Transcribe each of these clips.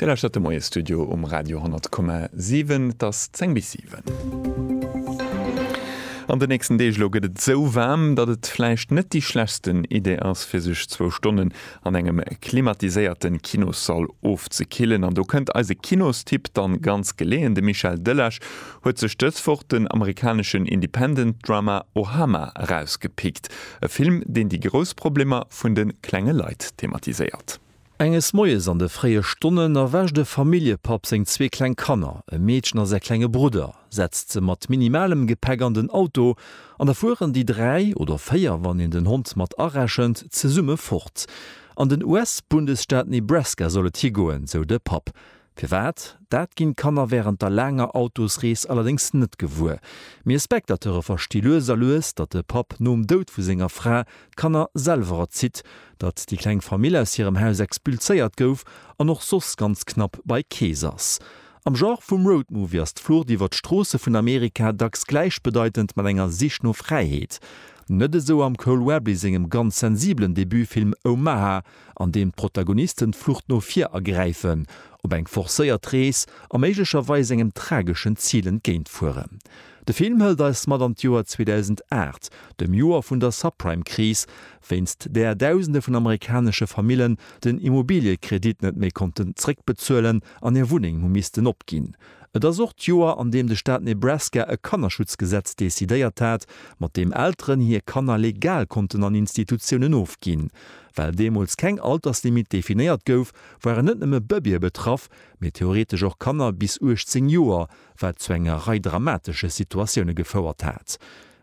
Dir lauschtert de Moie-Studio um Radio 10,7. Et ass 10 bis 7. An de nächsten Deeg elo gëtt et esou waarm, datt et vläicht net déi schlechsten Idee ass, fir sech zwou Stonnen an engem klimatiséierte Kinossall ofzekillen. An do kënnt eise Kinostipp dann ganz geleeën. De Michel Delage huet sech dës Woch den amerikaneschen Independent Drama Ohama erausgepickt, e Film, deen déi grouss Problemer vun de klenge Leit thematiséiert. Enges Moies an de fréie Stonnen erwächt e Familljepapp seng zwee kleng Kanner, e Meedchen a säi klenge Brudder, setzt se mat minimalem Gepäck an den Auto an da fueren déi dräi, oder véier wann een den Hond mat arechent, zesumme fort. An den US-Bundesstaat Nebraska soll et higoen, sou de Papp. Firwat? Dat ginn d'Kanner wärend der laanger Autosrees allerdéngs net gewuer. Mir Spectateure versti lues a lues, datt de Papp nom Doud vu senger Fra d'Kanner selwer erzitt, datt déi kleng Famill aus hirem Haus expulséiert gouf an och soss ganz knapp bei Kees ass. Am Genre vum Road Movie ass d'Flucht iwwer d'Stroosse vun Amerika dacks gläichbedeitend mat enger Sich no Fräiheet. Net esou am Cole Webley sengem ganz sensibelen Debutfilm Omaha. an deem d'Protagonisten d'Flucht no vir ergräifen, op eng forcéiert Rees a méiglecherweis engem trageschen Zil entgéint fueren. De Film hëlt eis mat an d'Joer 2008, dem Joer vun der Subprime-Kris, wéinst där Dausende vun amerikanesche Famillen den Immobiliëkredit net méi konnten zréckbezuelen an hir Wunneng hu missten opginn. Et ass och d'Joer, an deem de Staat Nebraska e Kannerschutzgesetz decidéiert hat, mat deem Elteren hir Kanner legal konnten an Institutiounen ofginn. Well deemools keng Alterslimit definéiert gouf, waren net nëmme Bëbeeë betraff, mee theoretesch och Kanner bis 18 Joer, wat zu enger Rei dramatesche Situatioune gefouert hat.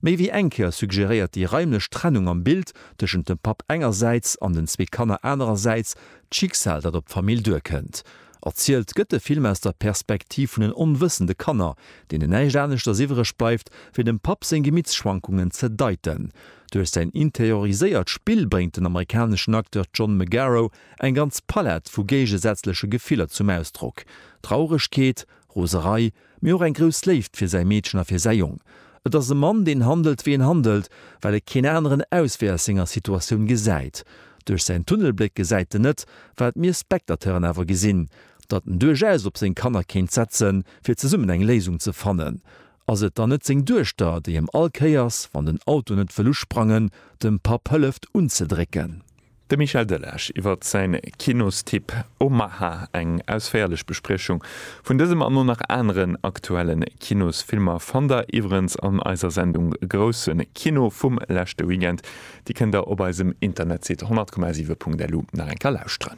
Méi wéi eng Kéier suggeréiert déi raimlech Trennung am Bild tëschent dem Papp engersäits an den zwee Kanner anerersäits d'Schicksal, dat op d'Famill duerkënnt. Erzielt gëtt de Film aus der Perspektiv vun den onwëssende Kanner, deenen näischt aneschters iwwereg bleift, wéi dem Papp seng Gemittschwankungen ze deiten. Duerch säin interioriséiert Spill bréngt den amerikaneschen Acteur John Magaro eng ganz Palett vu géigesätzleche Gefiller zum Ausdrock, Trauregkeet, Roserei, mee och eng grouss Léift fir säi Meedchen a fir säi Jong. Et ass e Mann, deen handelt, wéi en handelt, well e keen aneren Auswee aus senger Situatioun gesäit. Duerch säin Tunnelbléck gesäit en net, wat mir Spectateuren awer gesinn, datt en duerchaus op seng Kanner kéint setzen, fir zesummen eng Léisung ze fannen. Ass et dann net seng Duechter, déi em all Kéiers, wann den Auto net wëll usprangen, dem Papp hëlleft unzedrécken? De Michel Delage iwwert säin Kinostipp Omaha, eng ausféierlech Bespriechung vun dësem an o nach aneren aktuellen Kinosfilmer fannt der iwwerens an eiser Sendung Groussen Kino vum leschte Weekend. Déi kënnt der op eisem Internetsite 100,7.lu nach eng Kéier lauschteren.